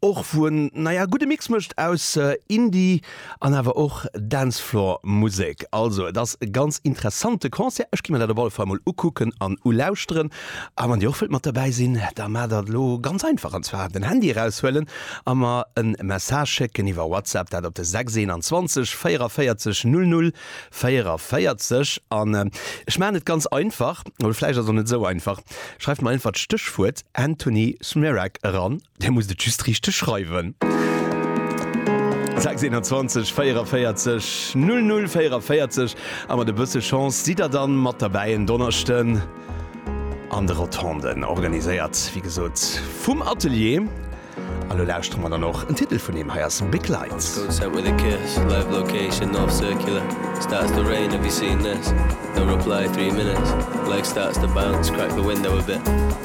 och wou en naja gudde Mix mécht aus Indie an awer och Dancefloor Musek. Also et ass e ganz interessante Concert, ech gi mer dat op alle Fall mol ukucken an ulauschteren. A wann dir och wëllt mat derbäi sinn, da maacht dat elo ganz einfach an zwar den Handy eraushuelen a mer en Message schécken iwwer WhatsApp, dat op de 621 44 00 44. An ech maachen et ganz einfach, oder vläicht ass et och net esou einfach, schreift mer einfach d'Stéchwuert Anthony Smerak eran. Dir musst et just richteg schreiwen. 6 21 44 00 44 a mat e bësse Chance sidd der dann mat derbäi en Donneschden an de Rotonden, organiséiert wéi gesot vum Atelier. A lo lauschtere mer dann och en Titel vun him. Hei ass Big Lights. Code sent with a kiss Live location off circular Starts to rain have you seen this No reply three minutes Legs starts to bounce Crack the window a bit